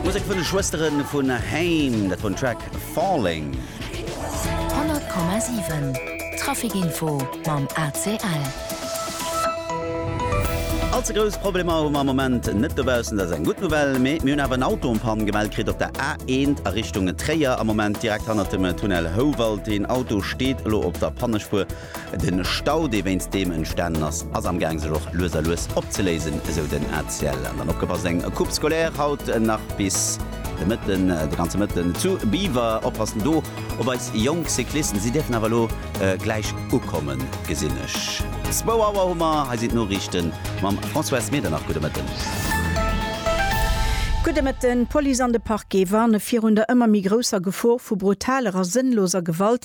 D'Musek vun de Schwëstere vu Haim, dat vun Track Falling. 100,7 Trafic Info mam ACL. All ze grouss Problemer hu mer am Moment net dobaussen, dat ass eng gutt Nouvelle. Mee mir hunn awer en Auto en Panne gemellt kritt op der A1 a Richtung Tréier. Am Moment direkt hannert dem Tunnel Houwald. Deen Auto steet elo op der Pannespuer. De Stau, dee wéinst deem entstanen ass, ass am Gaang sech och lues a lues opzeléisen, esou den ACL. An dann opgepasst, eng Coupe scolaire haut nach bis de Mëtten, de ganze Mëtten zu Biwer. Oppassen do op eis jonk Cyclisten, si dierfen awer elo gläich ukommen, gesinn ech. Zwou Auer hu mer, hei sinn d'Noriichte mam Françoise Medernach. Gudde Mëtten. Gudde Mëtten. D'Police an de Parquet warne virun der ëmmer méi grousser Gefor vu brutaler a sënnloser Gewalt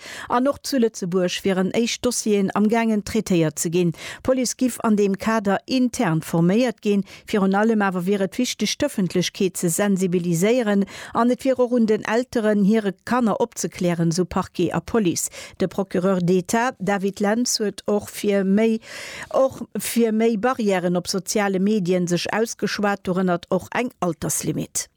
An och zu Lëtzebuerg wieren éischt Dossieren am gaangen traitéiert ze ginn. D'Police giff an deem Kader intern forméiert ginn. Virun allem awer wier et wichteg d'Ëffentlechkeet ze sensibiliséieren an et wier och un den Elteren hire Kanner opzeklären, sou Parquet a Police. De Procureur d'Etat David Lentz huet och fir méi och fir méi Barrièren op soziale Medien sech ausgeschwat, dorënner och eng Alterslimite.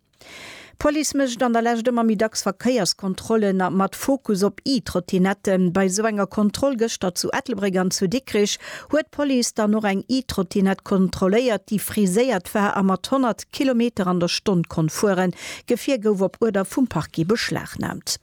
D'Police mécht an der Lescht ëmmer méi dacks Verkéierskontrollen a mat Fokus op E-Trottinetten. Bei esou enger Kontroll gëschter zu Ettelbréck an zu Dikrich huet d'Police dann och eng E-Trottinett kontrolléiert, déi friséiert war a mat 100 Kilometer an der Stonn konnt fueren. D'Gefier gouf op Uerder vum Parquet beschlagnaamt.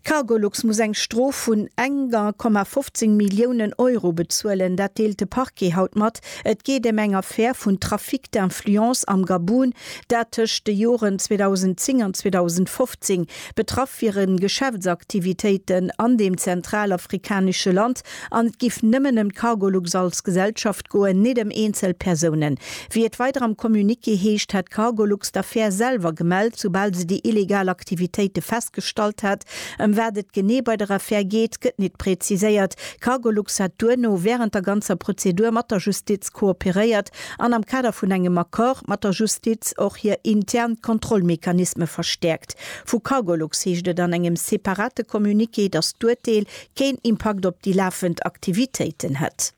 Cargolux muss eng Strof vun 1,15 Milliounen Euro bezuelen. Dat deelt de Parquet haut mat. Et geet ëm eng Affär vun Trafic d'influence am Gabun, dat tëscht de Joren 2010 an 2015. Betraff wiere Geschäftsaktivitéiten an deem zentralafrikanesche Land An et giff nëmmen ëm d'Cargolux als Gesellschaft goen, nit ëm eenzel Persounen. Wéi et weider am Communiqué heescht, hat d'Cargolux d'Affär selwer gemellt, soubal se déi illegal Aktivitéite festgestallt hat. Ëm wat et genee bei der Affär geet, gëtt nit präziséiert. Cargolux hat duerno während der ganzer Prozedur mat der Justiz kooperéiert an am Kader vun engem Accord mat der Justiz och hir intern Kontrollmechanisme verstäerkt. Vu Cargolux heescht et an engem separate Communiqué, datt d'Urteel keen Impakt op déi lafend Aktivitéiten hätt.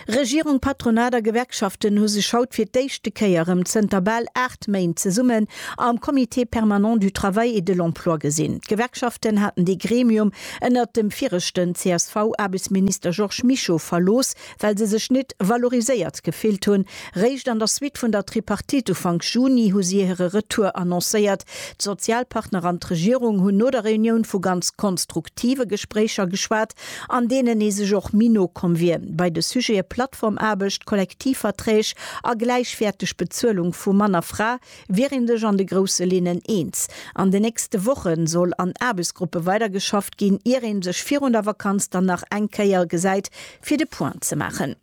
Regierung, Patronat a Gewerkschaften hu sech haut fir d'éischte Kéier rëm zënter bal 8 Méint zesummen am Comité permanent du travail et de l'emploi gesinn. D'Gewerkschaften haten dee Gremium ënnert dem viregten CSV-Aarbechtsminister Georges Mischo verlooss, well se sech nit valoriséiert gefillt hunn. Réischt an der Suite vun der Tripartite Ufank Juni hu si hire Retour annoncéiert. D'Sozialpartner an d'Regierung hunn no der Reunioun vu ganz konstruktive Gespréicher geschwat, an deenen ee sech och méi no komm wier bei de Sujete Plattformaarbecht, Kollektivverträg a gläichwäerteg Bezuelung vu Mann a Fra. Wier een sech an de grousse Linnen eens? An de nächste Woche soll an Aarbechtsgruppe weidergeschafft ginn, ier ee sech virun der Vakanz dann nach eng Kéier gesäit, fir de Point ze maachen.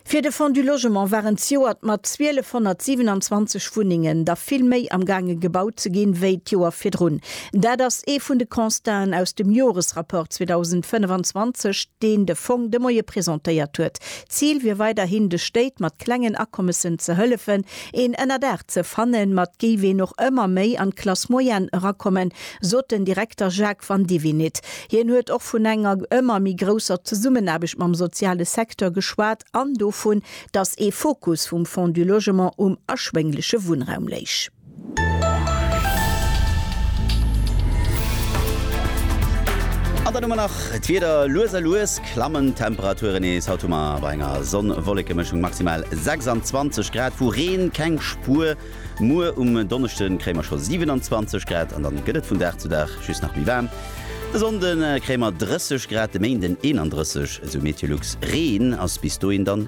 Fir de Fonds du Logement war en zejoert mat 1.227 Wunnengen da vill méi am gaange gebaut ze ginn, wéi d'Joer virdrun. Dat ass ee vun de Constaten aus dem Joresrapport 2025, deen de Fong de Moie presentéiert huet. D'Zil wier weiderhin, de Stéit mat klengen Akommessen ze hëllefen, Een Ënnerdaach ze fannen, mat géif een och ëmmer méi an d'Classe moyenne erakommen, sot den Direkter Jacques Vandivinit. Hien huet och vun enger ëmmer méi grousser Zesummenaarbecht mam soziale Secteur geschwat an dovun, datt ee Fokus vum Fonds du Logement um erschwéngleche Wunnraum léich. An dann hu mer nach d'Wieder lues a lues. Klammen d'Temperature nees, haut hu mer bei enger Sonn-Wolleke-Mëschung maximal 26 Grad, vu Reen keng Spuer. Muer um Donneschde kréie mer scho 27 Grad an dann gëtt et vun Dag zu Dag just nach méi waarm. De Sonnde kréie mer 30 Grad, de Méinden 31, esou Meteolux. Reen ass bis dohin dann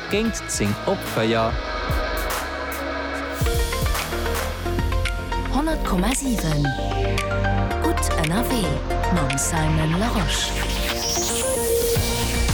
Géint 10 op 4. 100,7 Gutt ënnerwee mam Simon Larosche.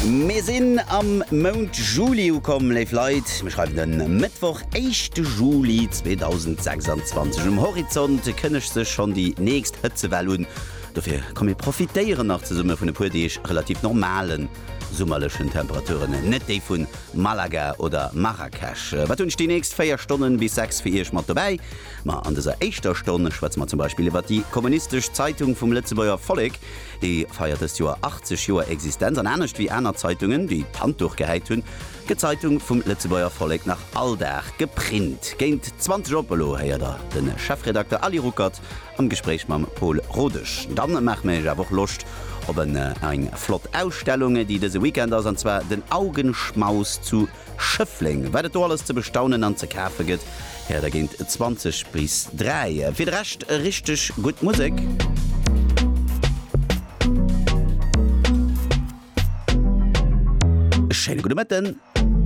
Mir sinn am Mount Juli ukomm, léif Leit. Mir schreiwen den Mëttwoch, éischte Juli 2026. Um Horizont kënnegt sech schonn déi nächst Hëtzewell un. Dofir komm mir profitéieren nach zesumme vun e puer Deeg relativ normalen. summerlechen Temperaturen, net déi vu Malaga oder Marrakesch. Wat hunn ech déi nächst 4 Stonnen bis 6 fir Iech mat dobäi? Ma an dëser éischter Stonn schwätze mer zum Beispill iwwert déi kommunistesch Zeitung vum Lëtzebuerger Vollek. Déi feiert dëst Joer 80 Joer Existenz an anescht wéi aner Zeitungen, déi d'Handduch gehäit hunn, gëtt d'Zeitung vum Lëtzebuerger Vollek nach all Dag geprint. Géint 20 op elo héiert Der de Chefredakter Aly Ruckert. am Gespréich mam Paul Rodesch. Dann maache mir iech awer och Loscht op en eng flott Ausstellung déi dëse Weekend ass an zwar den Augenschmaus zu Schëffleng. Wat et do alles ze bestaunen an ze kafe gëtt héiert der géint 20 bis 3. Fir de Rescht richteg gutt Musek. Schéine gudde Mëtten.